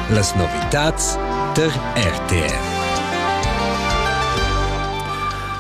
Las novitads der RTR.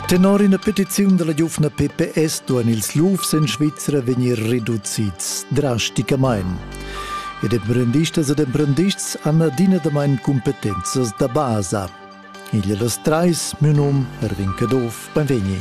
Tenor ina petiziun della giuvna PPS duan ils lufs in Svizzera vegnir reducids drasticamain. Ed emprendistas ed emprendists hanno adina da main competenzas da basa. Igl e las trais, miu num Erwin Caduff, beinvegni.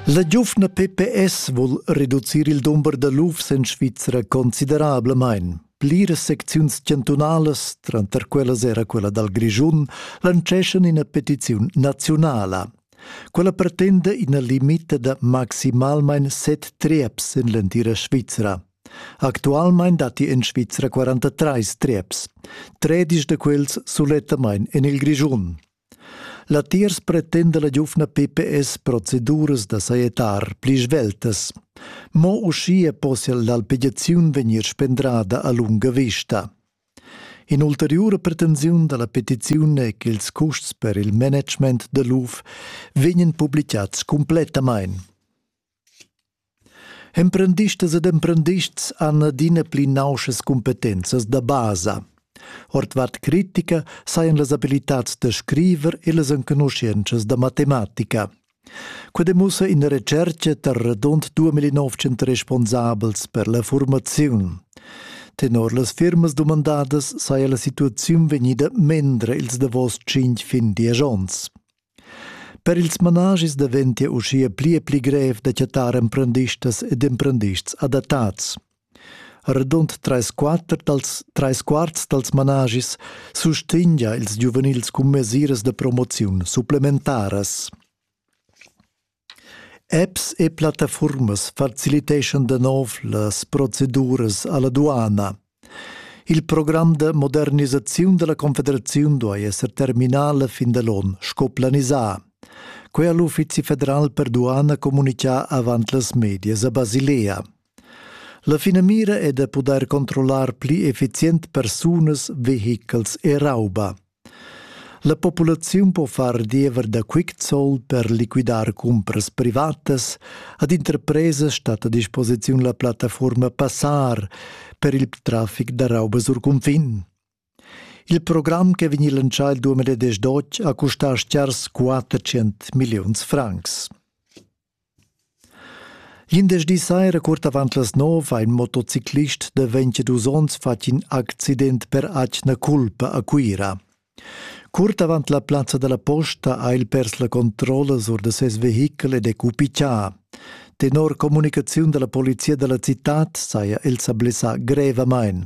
La giuvna PPS vul reducir il dumber da lufs en Svizra considerablamain. Pliras secziuns chantunalas, tranter quellas era quella dal Grischun, lanceschan ina petiziun naziunala. Quella pretenda ina limita da maximalmain set treps en l'entira Svizra. Actualmein datti en Svizra 43 trieps. Tredisch de quels sulettamain en il Grischun. Latiers pretenda la giufna PPS proceduras da saietar pli sveltas. Mo uschia possia l'alpegiaziun vegnir spendrada a lunga vista. In'ulteriura pretensiun dalla petiziun è che ils custs per il management da l'UF vegnan publicats cumplettamain. Emprendistas ed emprendists han adina pli nauschas cumpetenzas da basa. Ordvart critica sajan las abilitads da scriver e las enconuschientschas da matematica. Quai demussa ina retschertga tar radund 2900 responsabels per la formaziun. Tenor las firmas dumandadas saja la situaziun vegnida mendra ils davos tschintg fin diesch onns. Per ils managis daventia uschia pli e pli grev da chattar emprendistas ed emprendists adattads. Radund trais quarts dals, trais quarts dals managis sustegnia ils giuvenils cun mesiras da promoziun supplementaras. Apps e plattafuormas faciliteschan da nov las proceduras alla duana. Il program da modernisaziun dalla Confederaziun duai esser terminà la fin da l'on, sco planisà. Quei ha l'Uffizi federal per duana communicà avant las medias a Basilea. La finamira è da pudair controllar pli effizient persunas, vehichels e rauba. La populaziun po far diever da Quicksold per liquidar cumpras privatas. Ad interpresas stat a disposiziun la plattaforma Passar per il traffic da rauba sur cunfin. Il program che vegni lancià il 2018 ha custà stgars 400 milliuns francs. Glindesdi saira cuort avant las nov ha in motociclist de 22 onns fatg in accident per atgna culpa a Cuira. Cuort avant la plazza dalla posta ha el pers la controlla sur de ses vehichel ed è cupichà. Tenor communicaziun dalla polizia dalla citad saja el sa blessà grevamain.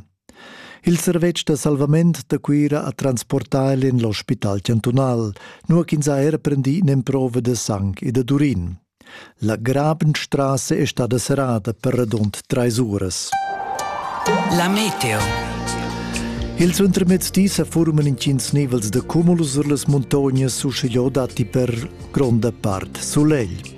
Il servetsch da salvament da Cuira ha transportà el en l'ospital chantunal, nua ch'ins ha er prendì in'emprova da sang e da durin. La Grabenstraße è stada serrada per radund trais uras. La meteo. Il suentermezdi sa forman intgins nivels da cumulus sur las muntognas uschigliò datti per gronda part sulegl.